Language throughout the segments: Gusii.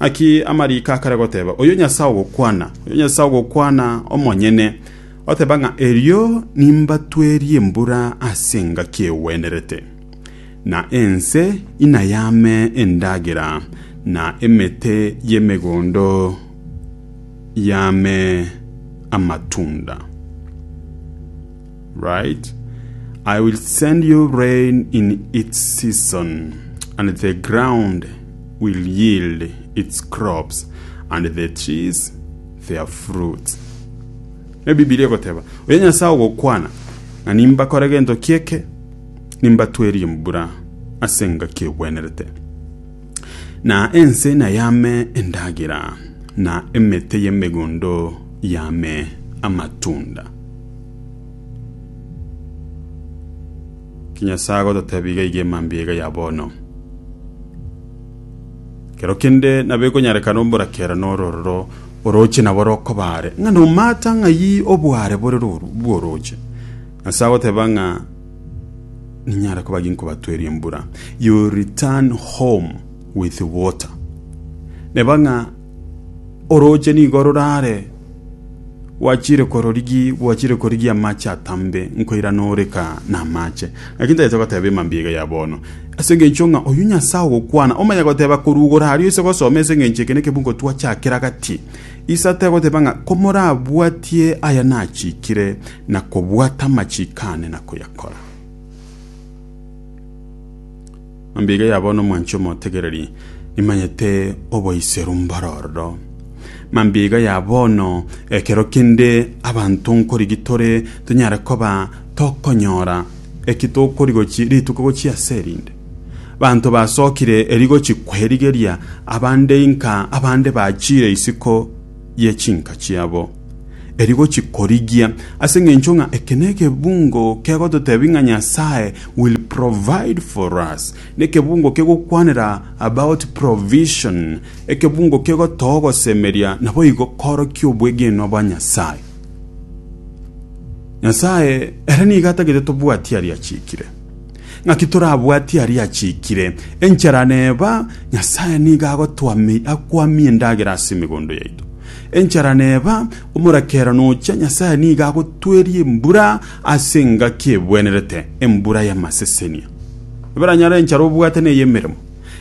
Naki amariiko akare goteba, Oyio Nyasae ogokwana, oyio Nyasae ogokwana omonyene, oteba ng'a, Erio nimbatwerie embura ase engaki egwenerete, na ense inayame endagera, na emete y'emegondo yame amatunda. Right? I will send you rain in its season, and the ground will yield its crops, and the trees their fruits. Ne Bibilia egoteba, oyo Nyasae ogokwana, na nimbakore gento kieke, nimbatwerie embura ase engaki egwenerete, na ense nayame endagera, na emete y'emegondo yame amatunda. Kinyasae agototebia iga iga emambia iga ya bono. Kero kende nabo ekonyarekana omborakera norororo oroche nabo rokobaare ng'a nomata ng'ai obware bore roru bworoche. Nyasae agoteba ng'a ninyare koba ginkobatweria embura. You return home with water. Neba ng'a Orooche nigo rorare gwachire kororigi gwachire korigi amache atambe nkoirana oreka na amache naki ntagete goteba emambia iga ya bono ase engencho ng'a oyu nyasae ogokwana omanye goteba korugora aria ase gosoma ase engencho eke nekebungo twachakera gati isa tegoteba ng'a komorabwatie aya nachikire na kobwata amachiko ane na koyakora Mambia iga yabwo nomwanchi omotegereri, nimanyete oboiseru mboro ororo. Mambia iga ya bono, ekero kende abanto nkorigi tore tonyare koba tokonyora eki tokorigochi rituko gochia ase erinde. Banto basokire erigochi kwerigeria abande inka, abande bachire isiko. ye chinka chiabo, eri gochikorigia, ase engencho ng'a eke nekebungo kegototebia ng'a Nyasaye will provide for us, nekebungo kegokwanera about provision, ekebungo kegotoa ogosemeria naboigo korokia obwegenwa bwa Nyasaye. Nyasaye ere nigo atagete tobwatie aria achikire. Naki torabwatie aria achiikire, Enchara neba, Nyasae nigo agotoamia, akwamie endagera ase emegondo yaito. Enchara neba, Omorekero nocha, Nyasae nigo agotweria embura ase engaki ebwenerete, embura y'amasesenia. Eberanyare enchara obwate ney'emeremo.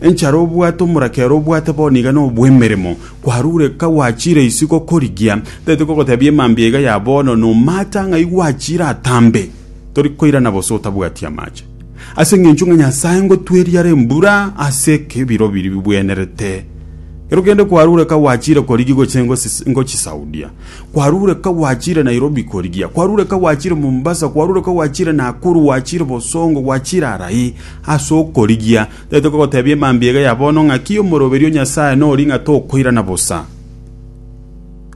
Enchara obwate omorekero obwate bono iga nobw'emeremo, kwarureka gwachire isiko korigia, teti kogotebia emambia iga ya bono, nomata ng'ai gwachire atambe. tori koirana bose otabwati amache. Ase engencho ng'a Nyasae ngotweriara embura ase ekebiro biri bibwenerete. Ero kende kwarure ka gwachire korigia goche ngochisaudia. Kwarure ka gwachire Nairobi korigia. Kwarure ka gwachire Mombasa. Kwarure ka gwachire Nakuru. Gwachire Bosongo. Gwachire arai. Ase okorigia. Tete kogotebia emambia ega ya bono ng'aki omoroberio Nyasae nori ng'a tokoirana bosa.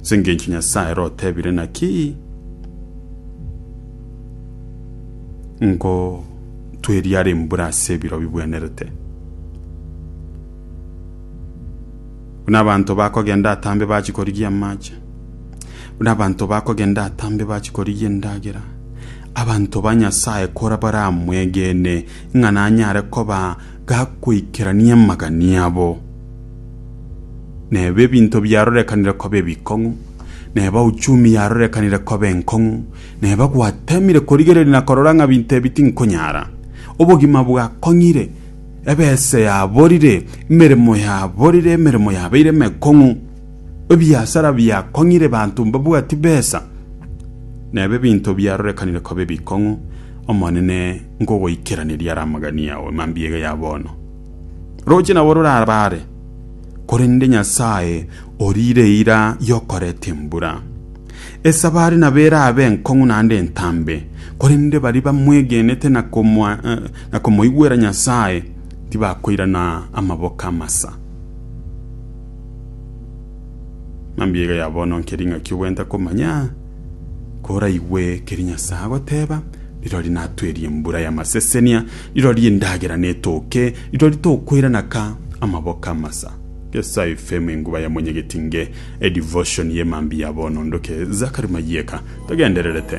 Ase engencho Nyasae ere otebire, Naki ngotweriara embura ase ebiro bibwenerete, buna abanto bakogenda atambe bachia korigia amache, buna abanto bakogenda atambe bachia korigia endagera, abanto ba Nyasae kora baramwegene, ng'a nanyare koba gakoikerania amagani abo, na ebe ebinto biarorekanire koba ebikong'u, na eba uchumi yarorekanire koba enkong'u, na eba gwatemire korigereria na korora ng'a binto ebi tinkonyara. Obogima bwakong'ire, ebesa yaborire, emeremo yaborire, emeremo yabeire emekong'u. ebiasara biakong'ire banto mbabwati besa, na ebe binto biarorekanire koba ebikong'u, Omonene nkogoikeraneria are amagani ao e mambia iga ya bono. Roche nabo rorabare, korende Nyasae oriire eira y'okoreta embura. Esabari nabo erabe enkong'u naende entambe, korende baria bamwegenete na komoigwera Nyasae tibakoirana amaboko amasa. Mambia iga ya bono nkeri ng'aki ogwenta komanya koraigwe ekeri Nyasae agoteba, rirori natwerie embura y'amasesenia, rirori endagera netoke, rirori tokoirana ka amaboko amasa. Gesa efemu enguba ya monyegeti nge edivoshoni ye mambia ya bono ndoke Zachary Mayieka togendererete.